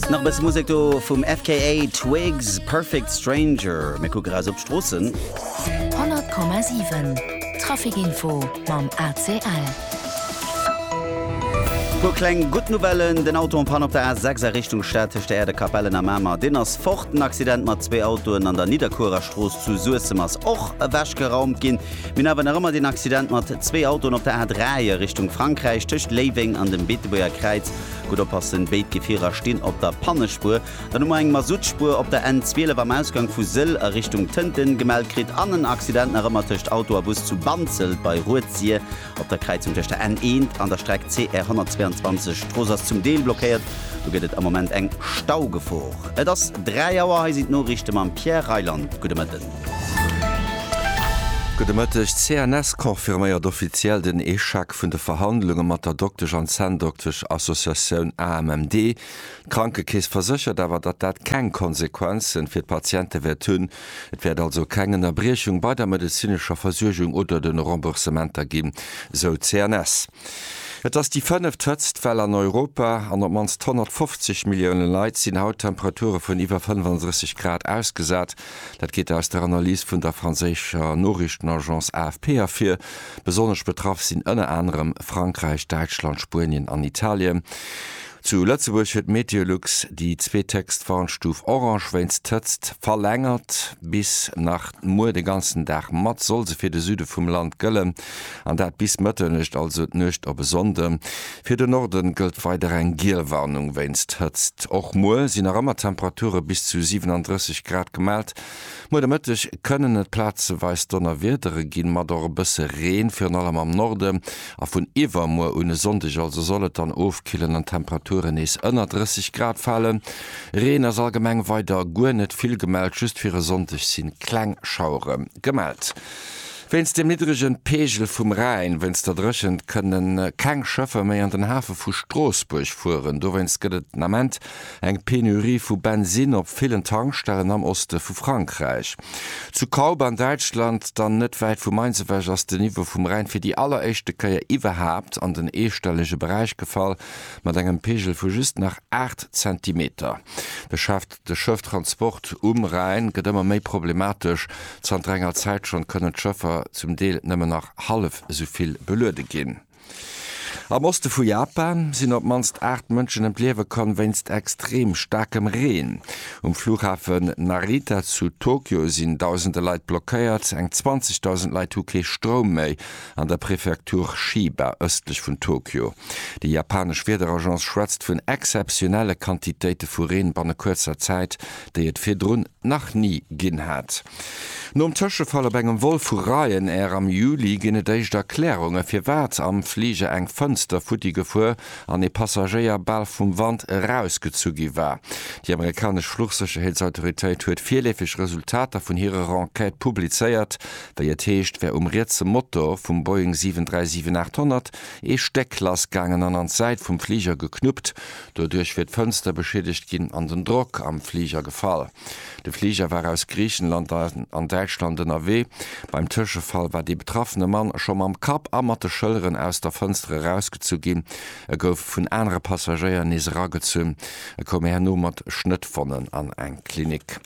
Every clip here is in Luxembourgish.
Nach e bësse Musek do vum FKA Twigs, Perfect Stranger. Mir kucke raus op d'Stroossen. 100,7 Traficinfo mam ACL. Puer kleng gutt Nouvellen, Den Auto en Panne op der A6 a Richtung Stad tëscht der Äerder Kapellen a Mamer, deen ass fort. Den Accident mat zwee Autoen an der Nidderkuerer Strooss zu Suessem ass och ewechgeraumt ginn. Mir hunn awer nach ëmmer den Accident mat zwee Autoen op der A3 a Richtung Frankräich tëscht Léiweng an dem Beetebuerger Kräiz. Gutt oppassen, béid Gefierer stinn op der Pannespuer. Dann hu mer eng Masuttspuer op der N 12 am Ausgang vu Sëll a Richtung Tënten gemellt kritt an en Accident nach ëmmer tëscht Auto a Bus zu Banzelt bei Rued-Sir op der Kräizung tëscht der N 1 an der Streck CR 122. D'Strooss ass zum Deel blockéiert, do gëtt et am Moment eng Staugefor. Et ass 3 Auer, hei sinn d'Noriichte mam Pierre Reyland. Gudde Mëtten. Gudde Mëtteg, D'CNS confirméiert offiziell den Echec vun de Verhandlunge mat der Doktesch an Zänndoktesch Associatioun AMMD. D'Krankekeess verséchert awer, datt dat keng Konsequenzen fir d'Patiente wäert hunn. Et wäert also keng Ënnerbriechung bei der medezinescher Versuergung oder den Remboursementer ginn, sou d'CNS. Et ass déi fënneft hëtzt Well an Europa an op d'mannst 150 Millioune Leit sinn haut Temperature vun iwwer 35 Grad ausgesat. Dat geet aus der Analys vun der franséischer Noriichtenagence AFP ervir. Besonnesch betraff sinn ënner anerem Frankräich, Däitschland, Spuenien an Italien. Zu Lëtzebuerg huet Meteolux déi zweethéchst Warnstuf Orange wéinst d'Hëtzt verlängert. Bis nach muer de ganzen Dag mat soll se fir de Süde vum Land gëllen. An dat bis Mëtternuecht, also d'Nuecht op e Sonnde. Fir de Norde gëllt weider eng giel Warnung wéinst Hëtzt. Och muer si nach ëmmer Temperature bis zu 37 Grad gemellt. Muer de Mëtteg kënnen et plazeweis Donnerwiedere ginn, mat och e bësse Reen, virun allem am Norde. A vun iwwermuer un e Sonndeg also soll et dann ofkillen an d'Temperaturen nees ënner 30 Grad falen. Reen ass allgemeng weider guer net vill gemellt, just fir e Sonndeg si kleng Schauere gemellt. Wéinst dem niddregen Peegel vum Rhäin, wéinst der Dréchent kënne keng Schëffer méi an den Hafe vu Stroossbuerg fueren. Dowéinst gëtt et den Ament eng Penurie vu Bensinn op villen Tankstellen am Oste vu Frankräich. Zu Kaub an Däitschland, dann net wäit vu Mainz ewech, ass den Niveau vum Rhäin fir déi alleréischte Kéier iwwerhaapt an den eestellege Beräich gefall, mat engem Peegel vu just nach 8 Zentimeter. De Chef. De Schëfftransport um Rhäin gëtt ëmmer méi problematesch. Zanter enger Zäit schonn kënnen d'Schëffer zum Deel nëmmen nach hallef esou vill beluede ginn. Am Oste vu Japan sinn op d'mannst 8 Mënschen ëm d'Liewe komm wéinst extrem staarkem Reen. Um Flughafen Narita zu Tokio sinn dausende Leit blockéiert. Eng 20.000 Leit hu kee Stroum méi an der Prefektur Chiba ëstlech vun Tokio. Déi japanesch Wiederagence schwätzt vun exzeptionelle Quantitéite vu Reen banne kuerzer Zäit, déi et virdrun nach ni ginn hat. Nom Tëschefall op engem Vol vu Ryanair am Juli ginn et éischt Erklärungen, firwat am Fliger eng Fënster futti gefuer an ee Passagéier bal vum Wand erausgezu gi war. Déi amerikanesch Fluchsécherheetsautoritéit huet virleefeg Resultater vun hirer Enquête publizéiert. Wéi et heescht, wär um rietse Motor vum Boeing 737-800 ee Stéck lass gaangen an an d'Säit vum Fliger geknuppt. Doduerch wier d'Fënster beschiedegt ginn an den Drock am Fliger gefall. De Fliger war aus Griichenland an Däitschland ënnerwee. Beim Tëschefall war dee betraffene Mann scho mam Kapp a mat de Schëlleren aus der Fënster erausgezu ginn. E gouf vun anere Passagéier nees eragezunn. E koum herno mat Schnëttwonnen an eng Klinik.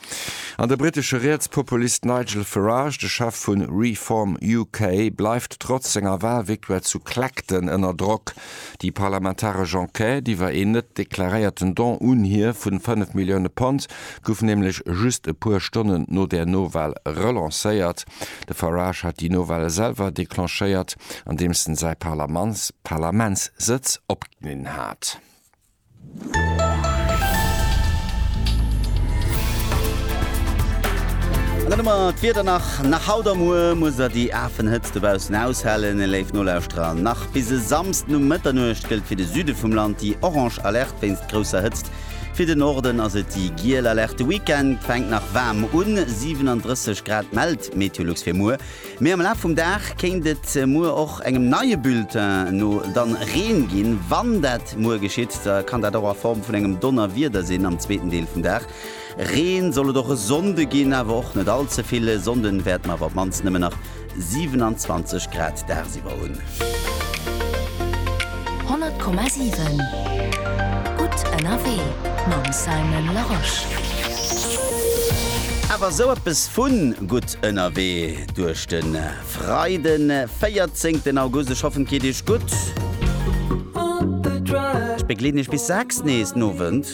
An de britesche Rietspopulist Nigel Farage, de Chef vu Reform UK, bleift trotz senger Walvictoire zu Clacton ënner Drock. Déi parlamentaresch Enquête iwwer een net deklaréierten Don un hie vu 5 Millioune Pond gouf nämlech just e puer Stonnen no der Nowal relancéiert. De Farage hat déi Nowale selwer declenchéiert, andeems en säi Parlamentssëtz opginn hat. An dann hu mer d'Wieder nach. Nach haut a muer muss der déi afen Hëtzt dobaussen aushalen. E léif Nolauschterer, nach bis e Samsden um Mëtternuecht gëllt fir de Süde vum Land déi orange Alerte wéinst grousser Hëtzt. Fir de Norden ass et déi giel Alerte. De Weekend fänkt nach waarm un, 37 Grad mellt Meteolux fir muer. Mee am Laf vum Dag kéint et muer och engem neie Bulletin no dann Reen ginn. Wann dat muer geschitt, da kann dat och a Form vun engem Donnerwieder sinn am zweeten Deel vum Dag. Reen soll et och e Sonnde ginn, awer och net all ze vill. E Sonnden wäerte mer awer op d'mannst nëmmen nach 27 Grad dagsiwwer hunn. 100,7 gutt ënnerwee mam Simon Larosche. Awer esou eppes vu gutt. Ënnerwee duerch de Freiden 14 August, ech hoffen et geet iech gutt. Ech begleeden iech bis 6 nees den Owend.